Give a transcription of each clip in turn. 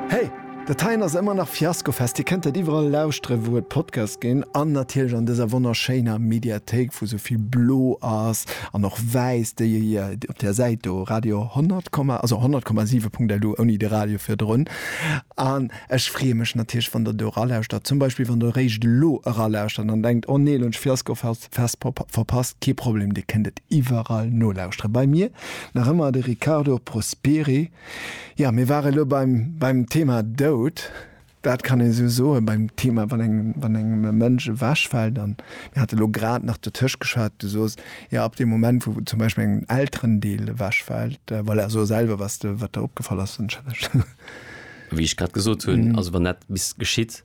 Hey! Dat heien ass ëmmer nach Fiascofest. Dir kënnt dat iwwerall lauschteren, wou et Podcasts ginn, an natierlech an dëser wonnerschéiner Mediathéik, wou sou vill blo ass an och wäiss, déi ee jo op där Säit do, Radio 100 Komma, also 100,7.lu ouni de Radio virdrun. An ech freeë mech natierlech, wann Der do eralauschtert. Zum Beispill, wann Der eréischt elo eralauschtert an denkt, Oh nee, elo hunn ech Fiascofest verpasst. Kee Problem, Dir kënnt et iwwerall nolauschteren. Bei mir nach ëmmer de Riccardo Prosperi. Ja, mir ware lo beim, beim Thema Doud. Dat kann een esou soen, beim Thema, wann engem, wann engem e Mënsch ewechfält. Dann, mir hate lo grad nach dotëscht geschwat, du soos, ja, ab deem Moment, wou zum Beispill engem en Elterendeel ewechfält, voilà, so selwer, was de, wat der opgefall ass, dann challenge. Wéi ech grad gesot hunn, also wann dat bis geschitt,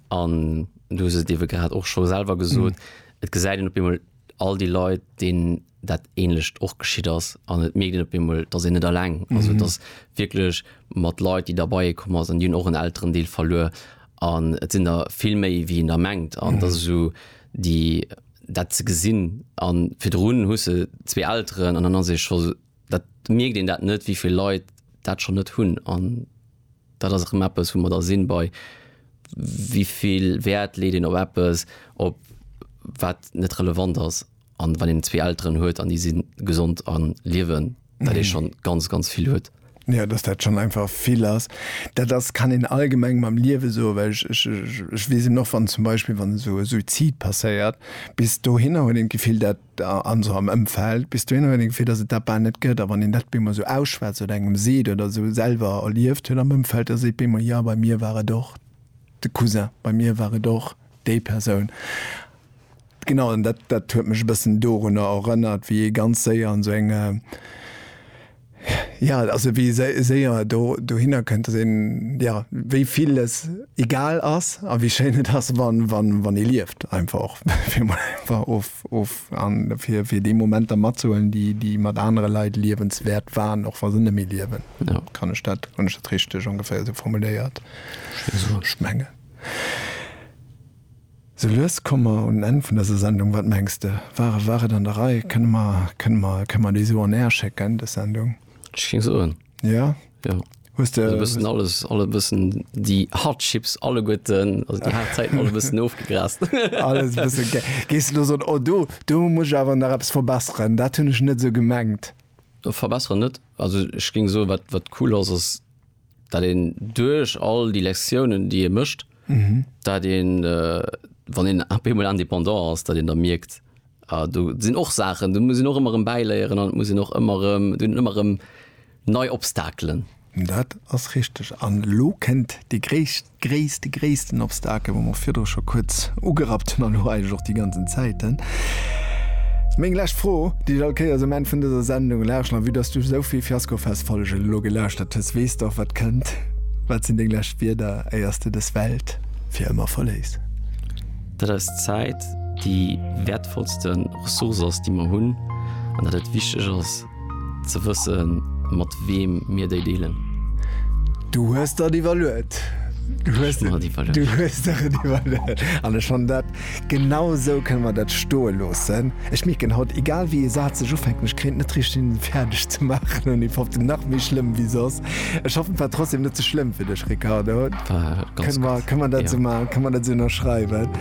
an du hues et iewe grad och scho selwer gesot, et gesäit een op eemol all déi Leit, deenen dat ähnlecht och geschitt ass an et mierkt een op eemol, dass een net alleng ass. Also et ass wierklech mat Leit, déi derbeier komm ass an déi hunn och en Elterendeel verluer an et sinn der vill méi wéi een der mengt an et ass esou déi dat ze gesinn an virdrun hu se zwee Elteren an dann ass ee scho dat mierkt een dat net, wéivill Leit dat schonn net hunn an dat ass erëm eppes, wou mer da sinn bei wéivill Wäert leet een op eppes, op wat net relevant ass. an wann een zwee Elteren huet an déi sinn gesond an liewen, dat ee schon ganz ganz vill huet. Ja, dass dat schon einfach vill ass. Dat ass kann een allgemeng mam Liewe soen, well ech ech ech ech weess eben och wann zum Beispill wann esou e Suizid passéiert, bis dohinner huet een d'Gefill dat an esou am Ëmfeld, bis dohinner huet een d'Gefill, dass et dat bal net gëtt, a wann een dat bemol esou ausschwätzt oder engem seet oder esou selwer erlieft huet am Ëmfeld, da seet bemol, jo bei mir war et och de Cousin, bei mir war et och déi Persoun. Genau, an dat, dat huet mech e bëssen dorunner erënnert, wéi ee ganz séier an esou eng, ja, also wéi ee séier do, dohinner kënnt, dass een, ja, wéi villes egal ass a wéi schéin et ass, wa, wa, wann ee lieft einfach och, fir emol einfach of, of, an fir, fir déi Momenter matzehuelen, déi, déi mat anere Leit liewenswäert waren, och wa se net méi liewen. Kann ech dat, hunn ech dat richteg ongeféier esou formuléiert? Ech mengen. Sou lues komme mer un den Enn vun dëser Sendung. Wat mengs de? War e war et an der Rei? Kënne mer kënne mer kënne mer déi esou on air schécken, dës Sendung? Ech géing soen, Jo? jo. Hues de. Esou e bëssen alles, alle bëssen déi Hardships alleguerten, also déi haart Zäiten alle bëssen ofgegrast. Alles e bësse ge. Géings de elo soen, Oh do, do muss ech awer nach eppes verbesseren, dat hunn ech net esou gemengt? Verbesseren net. Also ech géing soen, wat wat cool ass, ass. dat een duerch all déi Lektiounen, déi ee mécht, dat een, wann een ab eemol indépendant ass, dat een da mierkt, ah do sinn och Saachen, do muss een och ëmmer erëm bäiléieren an et muss een och ëmmer erëm, do sinn ëmmer erëm nei Obstakelen. Dat ass richteg. An elo kënnt déi gréisst gréisste, gréissten Obstakel, wou mer virdru scho kuerz ugerappt hunn, an elo eigentlech och déi ganzen Zäiten. Meng lescht Fro, déi ech all Kéiers um Enn vun dëser Sendung laschen, a vue dass du esou vill Fiaskofest-Follegen elo gelauschtert hues, weess de och, wat kënnt. Wat sinn deng lescht Wierder, éier s de dës Welt fir ëmmer verléiss? Dat eis Zäit déi wäertvollste Ressource ass, déi mer hunn, an dat et wichteg ass, Ze wëssen, mat weem mir déi deelen. Du hues der et iwwerluet. Du hues der et iwwerluet. An ech fannen dat, genau esou kënne mer dat stoe loossen. Ech mierken haut, egal wéi ee Saz sech ufänken, ech kréien et net richteg hin, en fäerdeg ze maachen, ouni fofte nach méi schlëmm wéi soss. Ech hoffen, et war trotzdem net ze schlëmm fir dech, Ricardo. War ganz gutt. Kënne mer dat esou maachen? Kënne mer dat esou ënnerschreiwen?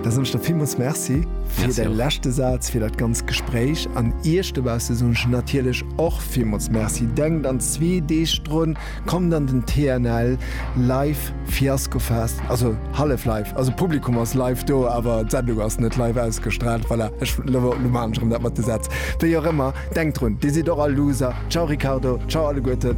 Da soen ech der villmools Merci fir de leschte Saz, fir dat ganz Gespréich an Iech dobausse soen ech natierlech och villmools Merci. Denkt an zwee Deeg drun, kommt an den TNL Live Fiaskofest, also hallef live, also d'Publikum ass live do, awer d'Sendung ass net live ausgestraalt. Voilà, ech elo maachen ech erëm dat mat de Sätz. Wéi och ëmmer, denkt drun, Dir sidd och all Loser. Ciao Ricardo, ciao alleguerten.